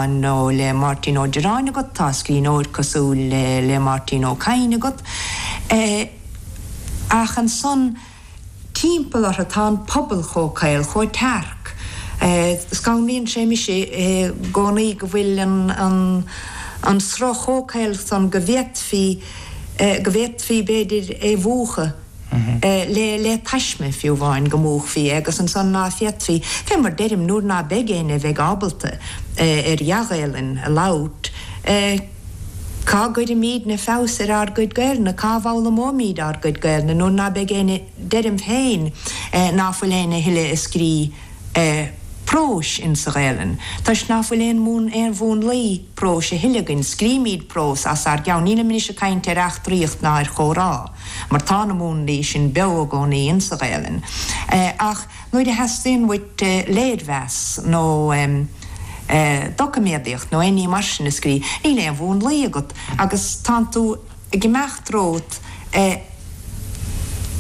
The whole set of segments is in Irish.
Nó le Máirtín Ó Direáin agat? Tá scríbhneoir cosúil le le Máirtín Ó Cadhain agat. Ach ansan timpeall orthu tá an pobal chomh caol, chomh tearc. Scanraíonn sé mise i gcónaí go bhfuil an an sruth chomh caol san go bhféadfaí go bhféadfaí b'fhéidir é mhúchadh. le taisme, fiú amháin, go múchfaí, agus ansan ná féadfaí, fé mar deirim, nuair ná beidh éinne a bheidh ábalta ar dhea-Ghaelainn a labhairt, Cá gcuirfimídne feabhas ar ár gcuid Gaelainne, cá bhfoghlaimeoimíd ár gcuid Gaelainne nuair ná beidh éinne, deirim féin ná fuil éinne a thuille ag scríobh próis insa Ghaelainn, toisc ná fuil aon mhún, aon mhúnlaí próis a thuille againn, scrímíd prós as ár gceann, nílim anois ag cainnt ar eachtraíocht ná ar chomhrá. mar tá na múnlaí sin beo i gcónaí insa Ghaelainn, ach nuair a theastaíonn uait léirmheas nó doiciméadaíocht nó aon ní mar sin a scríobh, níl aon mhúnlaí agat agus tánn tú ag imeacht romhat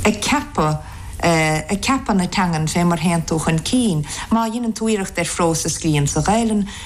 ag ceapadh, ag ceapadh na teangan fé mar théann tú chun cinn. Má dheineann tú iarracht ar phrós a scríobh insa Ghaelainn,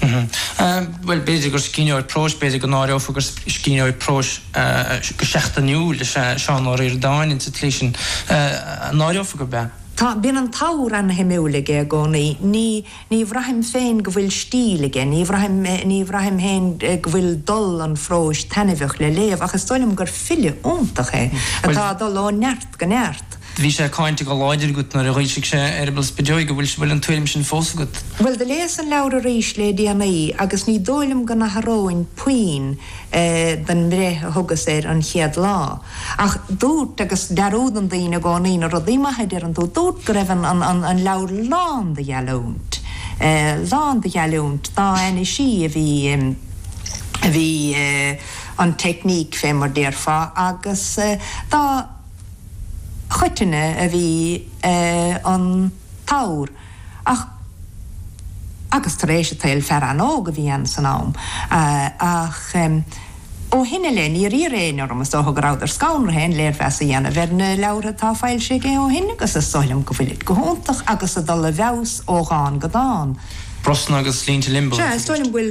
Bhuel, b'fhéidir gur scríbhneoir próis, b'fhéidir go n-áireofar gur scríbhneoir próis go seachtainiúil is ea Seán Ó Ríordáin ins an tslí sin. An áireofar gurb ea? Tá, bíonn an t-abhar an-shuimiúil aige i gcónaí. Ní, ní bhraithim féin go bhfuil stíl aige, ní bhraithim, ní bhraithim féin go bhfuil dul an phróis taitneamhach le léamh ach is dóigh liom gur file iontach é atá ag dul ó neart go neart. Do bhí sé cáinte go láidir agat nuair a dh'fhoilsigh sé Eireaball Spideoige. Bhfuil, bhfuil an tuairim sin fós agat? Bhuel, do léas an leabhar arís lé déanaí agus ní dóigh liom go n-atharóinn puinn den mbreith a thugas air an chéad lá. Ach dúrt, agus dearúdann daoine i gcónaí na rudaí maithe a deireann tú, dúrt go raibh an, an, an, an leabhar lán de gheallúint, lán de gheallúint dá ainnisí a bhí, a bhí an technique fé mar déarfá agus dá, choitinne a bhí an t-abhar ach agus tar éis an tsaoil fear an-óg a bhí ann san am ach ó shin i leith níor iarr éinne orm is dócha go rabhadar scannraithe aon léirmheas a dhéanamh ar na leabhartha atá foilsithe aige ó shin agus is dóigh liom go bhfuilid go hiontach agus ag dul i bhfeabhas ó dhán go dán. Brosna agus Línte Liombó, a tuigeadh. Sea, is dóigh liom go bhfuil.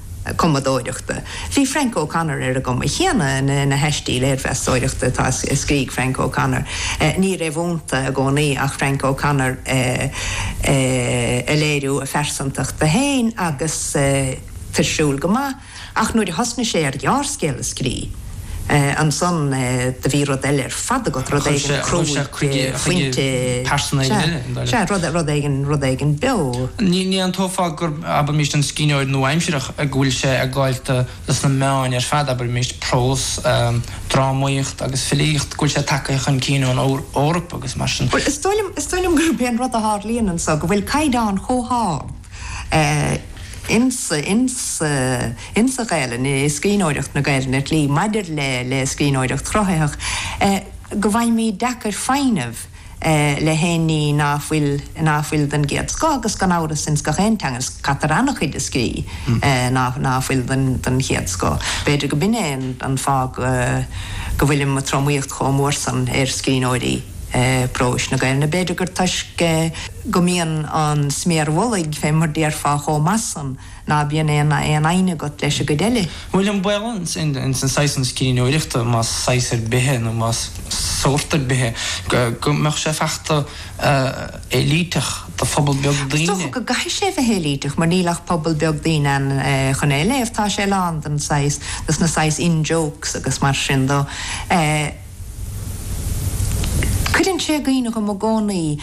cumadóireachta. Bhí Frank O'Connor ar an gcuma chéanna na haistí léirmheastóireachta atá, a scrígh Frank O'Connor. Ní rófhónta i gcónaí ach Frank O'Connor ag léiriú a phearsantachta féin agus tuirsiúil go maith ach nuair a thosnaigh sé ar ghearrscéal a scríobh, Ansan do bhí rud eile ar fad agat, rud éigin cruaidh, phointe, sea, rud éigin, rud éigin beo. Ní aontófá abraimis an scríbhneoir nua-aimsireach go bhfuil sé ag gabháilt leis na meáin ar fad abraimis, prós, drámaíocht agus filíocht, go bhfuil sé tagtha chun cinn fén Eoraip agus mar sin. Bhuel, is dóigh liom, is dóigh liom gurb é an rud a tharlaíonn anso go bhfuil caighdeán chomh hard. insa Ghaelainn, i scríbhneoireacht na Gaelainne, go háirithe maidir le scríbhneoireacht chruthaitheach, go bhfaighimid deacair foighneamh le haon ní ná fuil ná fuil den gcéad scoth agus gan amhras ins gach aon teanga caitear an-chuid a scríobh ná ná fuil den chéad scoth. B'fhéidir go b'in é an fáth go bhfuilim ag tromaíocht chomh mór san ar scríbhneoirí próis na Gaelainne. B'fhéidir gur toisc go mbíonn an sméar mhullaigh fé mar déarfá chomh maith san ná bíonn aon fhoighne agat leis an gcuid eile. Bhfuil an baol ins an saghas san scríbhneoireachta, más saghas ar bith é nó más sórt ar bith é, go mbeadh sé saghas éilíteach do phobal beag daoine. Is dócha go gcaithfidh sé bheith éilíteach mar níl ach pobal beag daoine ann chun é a léamh. Tá sé lán den saghas, dos na saghas in-jokes agus mar sin dó. Cuireann sé i gcuimhne dhom i gcónaí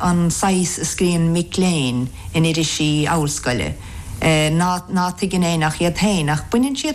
an saghas a scríonn mic léinn in irisí ollscoile, ná tuigeann éinne ach iad féin, ach baineann siad.